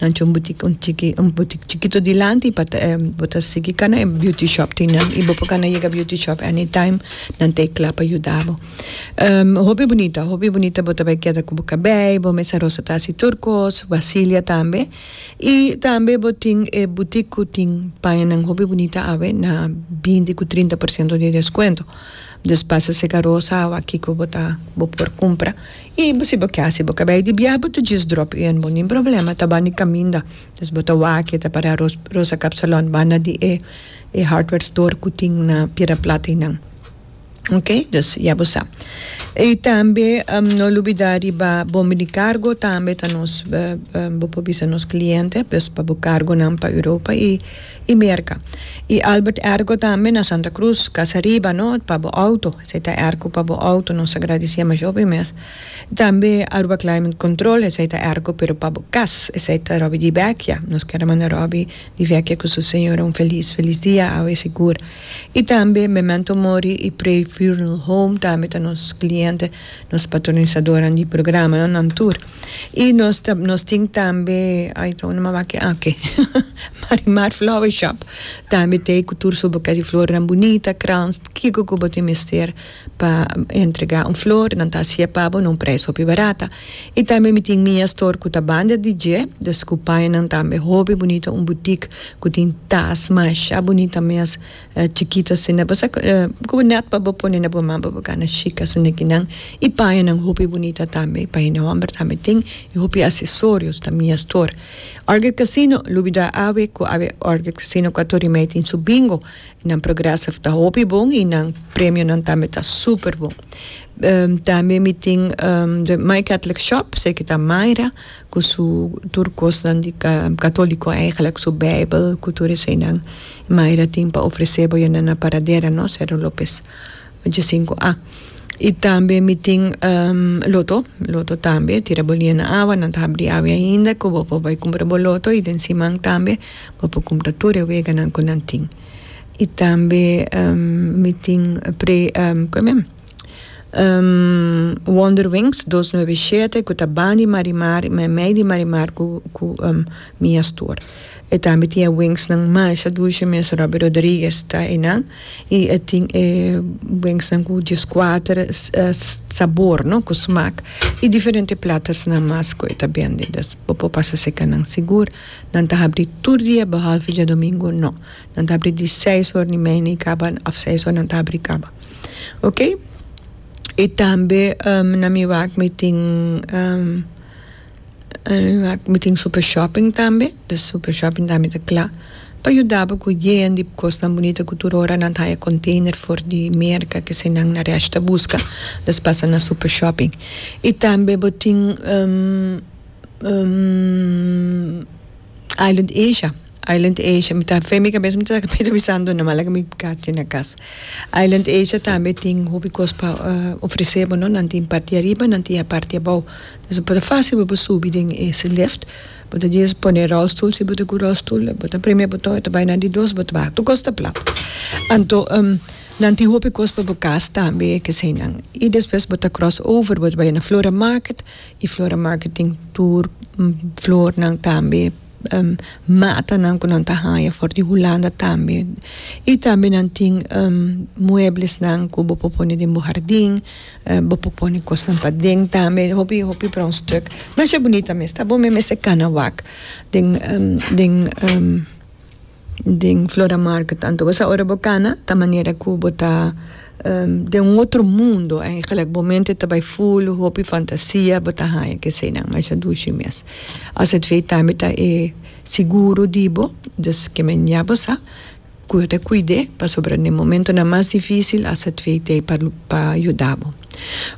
Nan cu un butik un chiki un butik chikito dilanti y pa ta e bo ta sigui cana e beauty shop tin nan y bo por cana yega beauty shop any time nan ta e cla pa yuda bo hopi bunita hopi bunita bo ta bay keda cu bo cabey bo mes arosa ta haci tur cos basilia tambe y tambe bo tin e butik cu tin paña nan hopi bunita awe na binti cu trinta por ciento di descuento. Just pasa sega rosa awa kiko bo ta bo por kumpra i si bo ke hasi bo kabei di biaha bo ta just drop i bo nin problema ta bani kaminda just bo ta wak i ta para rosa kap salon banda di e e hardware store ku tin na piedra plata i nan ok just ya bo sa i tambe no lubida riba bombi di kargo tambe ta nos bo por bisa nos kliente just pa bo kargonan pa Europa i. y Merca. Y Albert ergo tambe na Santa Cruz casa riba no pa bo auto esai ta ergo pa bo auto nos a gradicié mas hopi mes y tambe Aruba climate control esai ta ergo pero pa bo cas esai ta Robby di Vecchia nos quiero manda Robby di Vecchia cu su señora un feliz feliz dia awe sigur y tambe Memento Mori y Pray Funeral Home tambe ta nos cliente nos patronisadoran di programa no nan tur. Y nos ta nos tin tambe ay ta un mama aki ah okay Marimar flower shop tambe tey cu tur su buquet di flornan bunita krans kico cu bo tin mester pa entrega un flor nan ta acia pa bo na un prijs hopi barata y tambe mi tin Mia store cu ta banda di dje dus cu pañanan tambe hopi bunita un boutique cu tin tas masha bunita mes Chikito asina, bo sa ku nèt pa bo pone na bo man pa bo gana shika si nekinan i pañanan hopi bunita tambe, paña di hòmber tambe tin i hopi asesorios ta mia stor. Orchid Casino, lubida awe ku awe Orchid Casino ku ato rimei tin su bingo, nan progrèsive ta hopi bon i nan premionan tambe ta super bon. Tambe mi tin de My Catholic Shop, seki ta Myra. ku su tur kosnan di katoliko eigenlek su beibel ku tur eseinan Mayra tin pa ofresé bo yende na paradera no Cerro Lopez ocho sinku a i tambe mi tin loto loto tambe tira bo lia na awa nan ta habri awe ainda ku bo por bai kumpra bo loto i den siman tambe bo por kumpra tur e weganan ku nan tin i tambe mi tin kuen mi. Wonder Wings dos nuebe i shete ku ta ban di Marimar i mei di Marimar ku ku mi a stor e tambe tin e wingsnan masha dushi mes Robby Rodriguez ta einan i e tin e wingsnan ku dieskuater sabor no ku smak i diferente platosnan mas ku e ta bende bo por pasa seka nan sigur nan ta habri tur dia behalve diadomingo no. Nan ta abri di seis or ni media y caba af seis or nan ta abri y caba ok y tambe na mi wak mi tin na mi wak mi tin super shopping tambe den super shopping tambe ta cla pa yuda bo cu yen di cosnan bunita cu tur ora nan ta haya container for di merca kese nan na resh ta busca nos pasa na super shopping y tambe bo tin island asia Island Asia mi ta fe mi cabeza mi ta sa kico ta bisando no hala cu mi carchi na cas. Island Asia tambe tin hopi cos pa ofrece bo no nan tin parti ariba nan tin parti abao entonces bo ta facil pa bo subi den ese lift bo ta djis pone rolstoel si bo ta cu rolstoel bo ta preme boton e ta bay nan di dos bo ta baha tur cos ta plat anto nan tin hopi cos pa bo cas tambe keseynan y despues bo ta cross over bo ta bay na Flora Market y Flora Market tin tur flornan tambe. matanan ku nan ta haña for di Hulanda tambe i tambe nan tin mueblesnan ku bo por pone den bo hardin bo por pone kosnan paden tambe hopi hopi bronstuk masha bunita mes ta bon mes mester kana wak den den. den flora market anto bo sa ora bo cana ta manera cu bo ta den un otro mundo ey gelijk bo mente ta bay full hopi fantasia bo ta haya kesenan masha dushi mes azv tambe ta e seguro di bo dus ke men ya bo sa cu yo ta cuide pasobra den e momentonan mas dificil azv ta ey pa yuda bo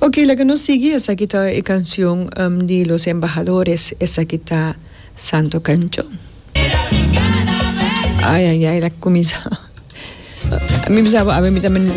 oke laga nos sigui esaki ta e cancion di los embahadores esaki ta santo cancion. Ay ay ay la cuminsa. Mi bisa bo, a ver, mi ta